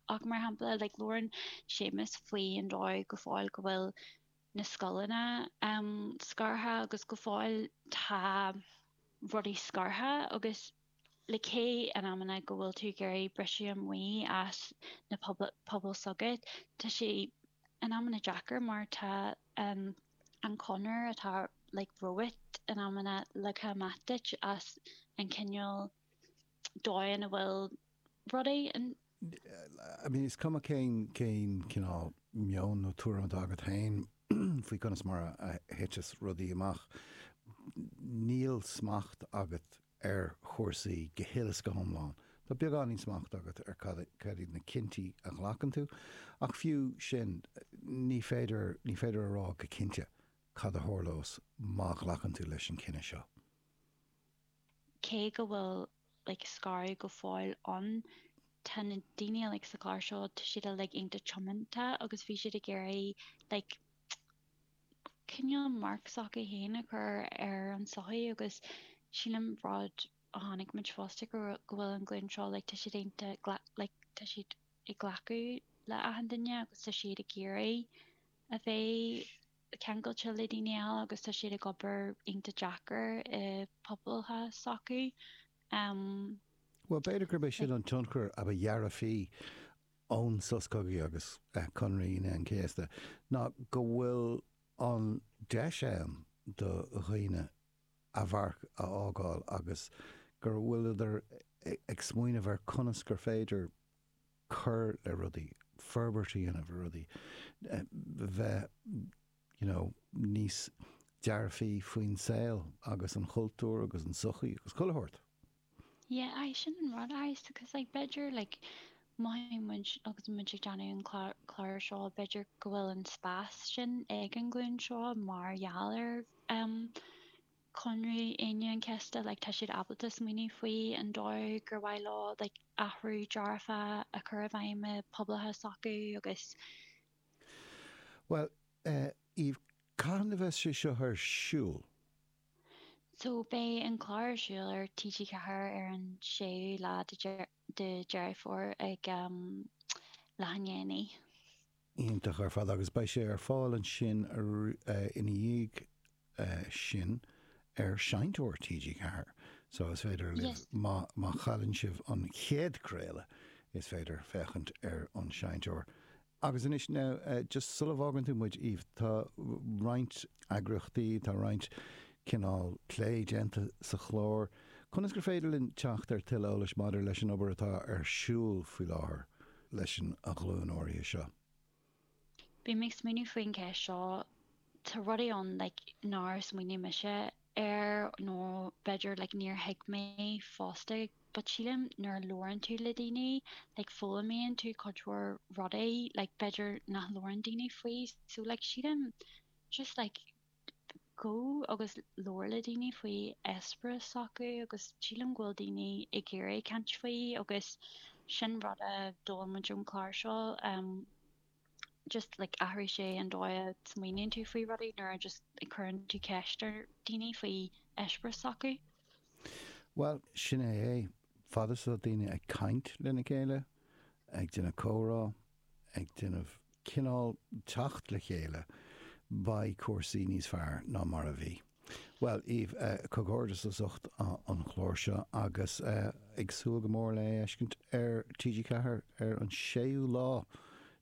Ach mar shampla, like, labhrann Séamus faoin dóigh go fóill go bhfuil na scoileanna um scartha agus go fóill tá rudaí scartha agus like cé in amanna go bhfuil tú ag iarraidh briseadh amach as na pobal pobal s'agat tá sé in amanna deacair mar tá an an chonair atá like romhat in amanna leagtha amach duit as an cineál domhain a bhfuil rudaí in. I mean, is cuma cén, cén cineál meoin nó tuairim atá agat féin faoi conas mar a, a thiteas rudaí amach, níl smacht agat ar chúrsaí go huile is go hiomlán. Tá beagáinín smacht agat ar cad, cad iad na cinntí a ghlacann tú, ach fiú sin, ní féidir, ní féidir a rá go cinnte cad a tharlós má ghlacann tú leis an cinneadh seo. cé go bhfuil like scaradh go fóill ann, tá na daoine like sa gclár seo tá siad uilig iontach tiomanta agus bhí siad ag iarraidh like cineál marc s'acu féin a chur ar an sochaí agus sílim rud a chonaic muid fosta go bhfuil an ghlúin seo like tá siad iontach like tá siad ag glacadh le achan duine agus tá siad ag iarraidh a bheith ceangailte le daoine eile agus tá siad ag obair iontach deacair i pobailthe s'acu. Bhuel, b'fhéidir gurb é sin an tionchar a ba dhearfaí ón sos cogaidh agus Conradh Aoine an Chéasta ná go bhfuil an deis ann do dhaoine a mharc a fhágáil agus go bhfuileadar ag smaoineamh ar conas gur féidir cur le rudaí, forbairt a dhéanamh ar rudaí, bheith you know níos dearfaí faoin saol agus an chultúr agus an sochaí agus chuile shórt. Yeah aye sin an rud aye so cause like b'fhéidir like mothaíonn muid agus muid ag déanamh an clár seo b'fhéidir go bhfuil an spás sin ag an ghlúin seo mar gheall ar em Conradh Aoine an Chéasta like tá siad ábalta smaoineamh faoi an dóigh gur mhaith leo like athrú dearfa a chur i bhfeidhm i pobailthe s'acu agus. Bhuel eh Eve cathain a bheas sé seo ar siúl? So beidh an clár ar siúl ar TG4 ar an séú lá de Deireadh Fómhair ag em leath i ndiaidh a naoi. iontach ar fad agus beidh sé ar fáil ansin ina dhiaidh sin ar Seinnteoir TG4 so is féidir libh, má chailleann sibh an chéad craoladh, is féidir féachaint ar an tSeinnteoir. Agus anois now, just sula bhfágann tú muid Eve, tá roinnt eagraíochtaí, tá roinnt cineál plé déanta sa chlár, conas gur féidir linn teacht ar tuilleadh eolais maidir leis an obair atá ar siúl faoi láthair? leis an ghlúin áirithe seo. Bím ag smaoineamh faoin gceist seo, tá rudaí ann like nár smaoinigh mise air nó b'fhéidir like níor thuig mé fosta but sílim nuair a labhrann tú le daoine like foghlaimíonn tú cuid mhór rudaí like b'fhéidir nach labhrann daoine faoi so like sílim just like go agus labhair le daoine faoi eispéireas s'acu agus sílim go bhfuil daoine ag iarraidh caint faoi agus sin rud a d'fhoghlaim muid ón chlár seo em just like athraigh sé an dóigh a smaoiníonn tú faoi rudaí nuair a just a cuireann tú ceist ar dhaoine faoi eispéireas s'acu. Bhuel, sin é é. Fad is atá daoine ag caint lena chéile, ag déanamh comhrá, ag déanamh cineál teacht le chéile beidh cúrsaí níos fearr ná mar a bhí. Bhuel Eve comhghairdeas as ucht an chlár seo agus ag súil go mór lena fheiscint ar TG4 ar an 6ú lá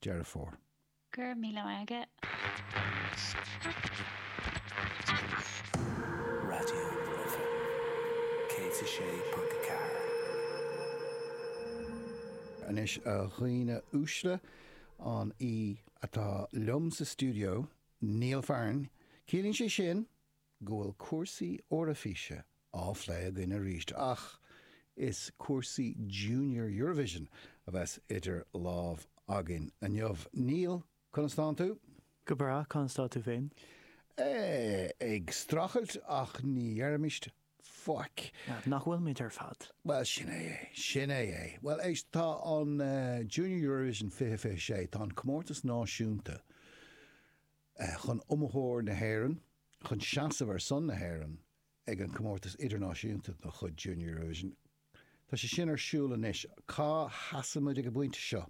Deireadh Fómhair. Go raibh míle maith agat. Anois a dhaoine uaisle, an té atá liom sa stiúideo, Neil Fearn, ciallaíonn sé sin go bhfuil cúrsaí Eoraifíse á phlé againn aríst, ach is cúrsaí Junior Eurovision a bheas idir lámh againn inniu. Neil, conas tánn tú? Go breá, conas tá tú féin? Ag strachailt, ach ní dheirimis faic. Nach bhfuilimid ar fad? Bhuel, sin é é. Sin é é. Bhuel, éist, tá an Junior Eurovision 2026, tá an comórtas náisiúnta chun iomaitheoir na hÉireann, chun seasamh ar son na hÉireann ag an comórtas idirnáisiúnta de chuid Junior Eurovision, tá sé sin ar siúl anois. Cá seasaimid ag an bpointe seo?